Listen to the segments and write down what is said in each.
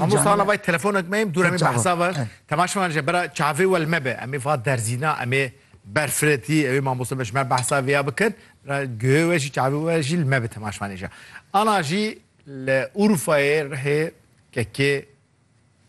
Hemû sala vay telefonek meyim dûr em ê behsa ver. Temaşe man je bera çavê wel mebe em ê va derzîna em ê ber firetî ew ê mamoste me ji me behsa vê ya bikin ra guhê we jî çavê we jî li me bi temaş manê je. Ana jî li Urfayê rihê kekê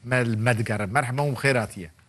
me li me digere. Merhema hûn bi xêr hatiye.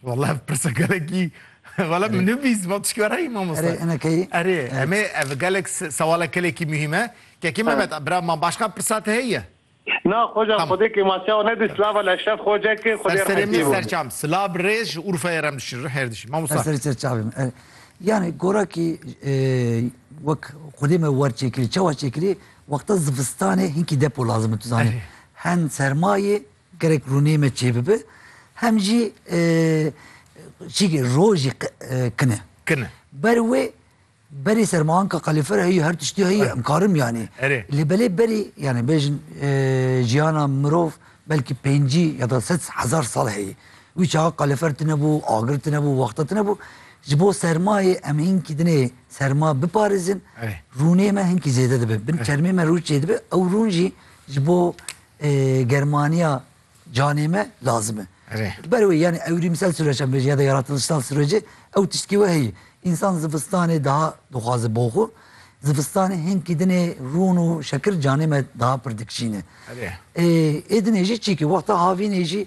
Wala ev pirsa gelekî wala min nivîs vat ji were yî mamoste. Erê ene keyî. Erê em ê ev gelek sewala kelekî muhîm e. Kekê Mehmet bira man başqa pirsa te heye? Na xoca Tamam. xwedê kê ma çawa nedî silava le şef xoca kê xwedê Serê rehmetî min bû. serçam silav bi rêz ji Urfayê re min şir her dişî. Mamosta. Serê ser çavê min. Erê. Yani gorakî e, wek xwedê me wer çêkirî. Çawa çêkirî? Wexta zivistanê hinkî depo lazim e tu zanî. Erê. Hen sermayê Gerek rûnê me çê bibe hem jî çîkê rojî kin e. Kin e. Ber wê berê sermayanka kalîfera heyî her tiştî heyî em karim yanî. Erê. Lê belê berî yanî bêjin jiyana mirov belkî pêncî ya da sed hezar sal heyî. Wî çaxa kalîfer tune bû, agir tune bû, wexta tune bû. Ji bo sermayê em hinkî dinê serma biparêzin. Erê. Rûnê me hinkî zêde dibe. Bin çermê me rû çêdibe ew rûn jî ji bo germaniya canê me lazim e. Ber wê yani ewrîmsel süreç em ya da yaratılışsal sürecê ew tiştkî we heye. İnsan zivistanê daha dixwaze bo xwe. Zivistanê hinkî dinê rûn û şekir canê me daha pir dikişîne. Ê dinê jî çîkî wexta havînê jî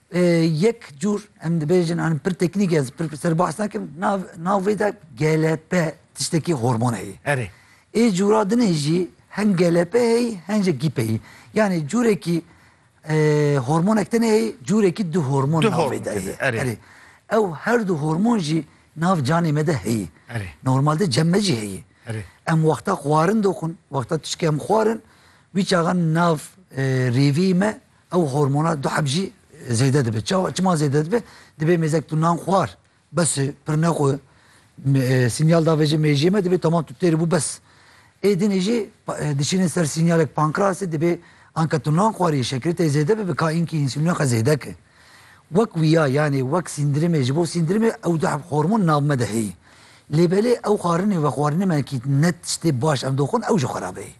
Yek cûr em dibêjin an pir teknîk ez pir ser bahs nakim nav nav vê de GLP tiştekî hormon heye. Erê. Ê cûra dinê jî hem GLP heyî hem jî GIP heyî. Yanî cûrekî hormonek tine heyî cûrekî du hormon nav vê de heye. Erê. Ew her du hormon jî nav canê me de heyî. Erê. Normal de cem me jî heyî. Erê. Em wexta xwarin doxin, wexta tişkê em xwarin wî çaxan nav rêvî me Ew hormona duheb jî zêde dibe. Çawa çima zêde dibe? Dibê mêzek tu nan xwar bes e pirne xwe sînyal da vejê mêjiyê me dibê temam tu têr bû bes. Ê dinê jî dişînin ser sînyalek pankrasê dibê anka tu nan xwariyê şekerê te zêde bibe ka înkî însûlîna xwe zêde ke. Wek wîya yanê wek sîndrimê ji bo sîndrimê ew duheb hormon nav me de heye. Lê belê ew xwarinê vexwarinê me kî ne tiştê baş ev doxin ew jî xwe rabeyê.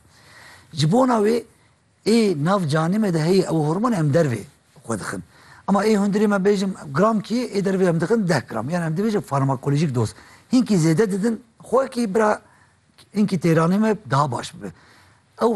Ji bona wê Ê nav canê me de heye ew hormon em dervê xwe dixin. Ema ê hundirê me bêjim gram kê ê dervê em dixin deh gram yan em dibêjin farmakolojîk doz. Hinkî zêde didin xwe kî bira hinkî têranê me daha baş bibe. Ew